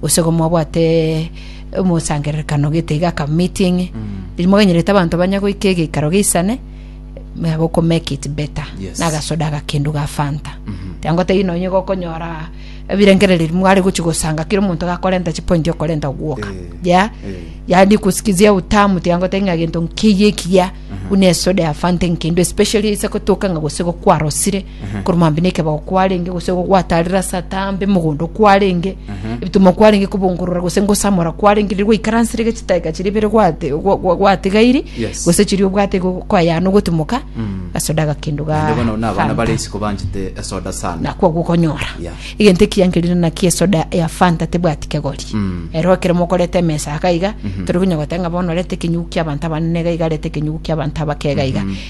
gose igo mwabwate omosangererekano gete iga ka meeting eri mwaganyerete abanto banya goika egeikaro geisane we have to make it better Yes. na agasoda agakendu ga fanta tiangotebi nonye gokonyora ebirengereri mware gochi gosanga kira omonto gakorenta chipointi okorenta ogwoka Eh, ya eh. yani kusikizia utamu tiangote ng'a gento nkiyi ekiya buna esoda ya fanta enkendu especially ise gotoka ng'a gose gokwarosire korwa mambia na ekebao kwarenge gose gwataarire ase atambe mogondo kwarenge ebitumo kwarenge kobongorora gose ngosamora kwarenge riria gwaikaransire gose chidakika chiria ibere gwate gwa- gwa- gwatigairi Yes. gose chiria obwate go- kwayana ogotimoka ase odaga kendo ga Naende bono na abana Fanta. bare isiko banchete esoda sana nakwo gokonyora Yeah. egento ekiankerire naki esoda ya fanta tebwati kegori Mm. ero ekero mokoreta emesa iga iga tori konya goteba ng'a bono orete ekenyugu kia abanto abanene iga iga arete ekenyugu kia abanto abake iga iga